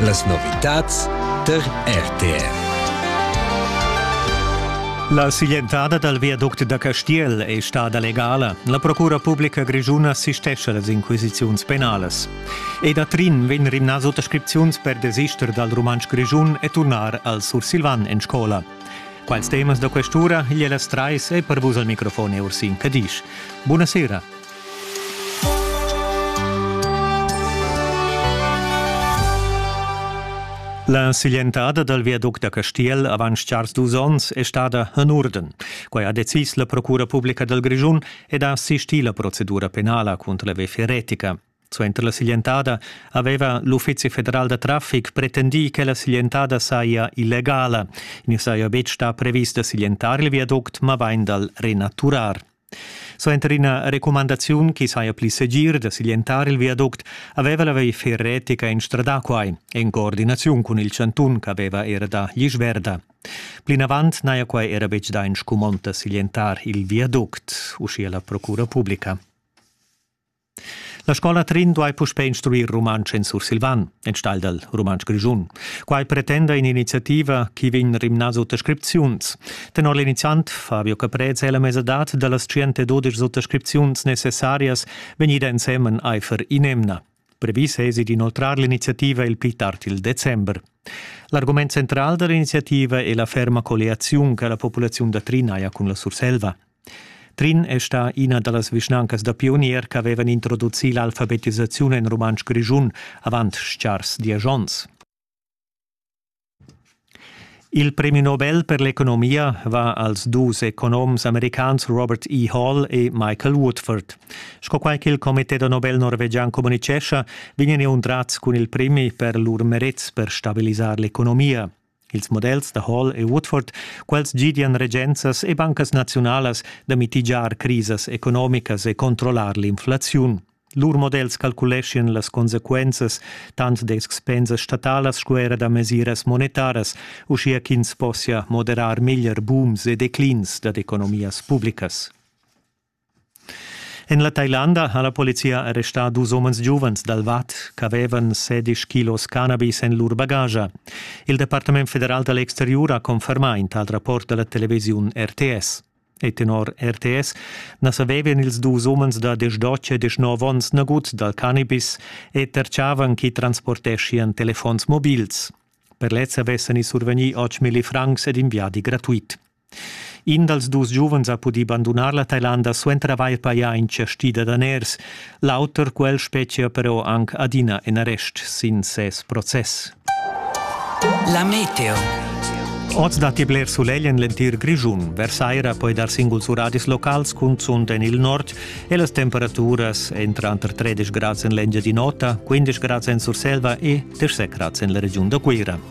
Las novitads tar RTR. La siglientada dal viaduct da Castiel è stada legala. La Procura publica grischuna assistescha las inquisiziuns penalas. E da Trin vegn rimnà suttascripziuns per desister dal rumantsch grischun e turnar al sursilvan en scola. Quals temas da questura igl e las trais è per vus al microfon Ursin Cadisch. Buonasera. La siglientada dal viaduct da Castiel avant chars dus onns è stada en urden. Quai ha decis la Procura publica dal Grischun ed ha assistì la procedura penala cunter la VF Retica. Suenter la siglientada aveva l'Uffizi federal da traffic pretendì che la siglientada saja illegala. I saja betg stà previs da siglientar il viaduct, ma vain dal renaturar. Suenter ina recumandaziun che saja pli segir da siglientar il viaduct aveva la Wayfair Retica instradà quai, en coordinaziun cun il chantun ch'aveva era da Glisch Verda. Plinavant n'haja quai era betg dà in scumond da siglientar il viaduct, uschia la procura publica. La scola Trin duai puspè instruir rumantsch en sursilvan, enstagl dal rumantsch grischun. Quai pretenda in'iniziativa chi vegn rimnà suttascripziuns. Tenor l'iniziant Fabio Caprese è la mesadad da las 112 suttascripziuns necessarias vegnida ensemen aifer in'emna. Previs esi d'inoltrar l'iniziativa il pli tard il december. L'argument central da l'iniziativa è la ferma colliaziun che la populaziun da Trin haja cun la Surselva. Trin è stà ina da las vischnancas da pionier ch'avevan introducì l'alfabetisaziun en rumantsch grischun avant chars diesch onns. Il premi Nobel per l'economia va als dus economs americans Robert E. Hall e Michael Woodford. Sco quai ch'il Comité da Nobel norvegian communitgescha, vegnan inundrats cun il premi per lur merets per stabilisar l'economia. ils models da Hall e Woodford, quels gidian regenzas e bancas naziunalas da mitigiar crisas economicas e controllar l'inflaziun. Lur models calculeschian las consequenzas tant da expensas statalas sco era da mesiras monetaras, uschia ch'ins possia moderar meglier booms e declins dad economias publicas. En la Tailanda ha la polizia arrestà dus umens giuvens dal Vad ch'avevan sedisch kilos cannabis en lur bagascha. Il Departament federal da l'exteriur ha confermà in tal rapport da la televisiun RTS. E tenor RTS na savevan ils dus umens da 18 e 19 onns nagut dal cannabis e terciavan chi transporteschian telefons mobils. Per lez avessan i survegnì 8.000 francs ed in viadi gratuit. In dals dus giuvens ha pudì bandunar la Tailanda suenter avair pajà in chastì da daners. L'auter quel spetgia però anc adina in arrest sin ses process. La meteo. Oz datti bler sulegl en l'entir Grischun. Versaira poi dar singuls uradis locals, cunzunt en il nord, e las temperaturas èn tranter 13 grads en l'Engiadin'Ota, 15 grads en Surselva e 17 grads en la regiun da Cuira.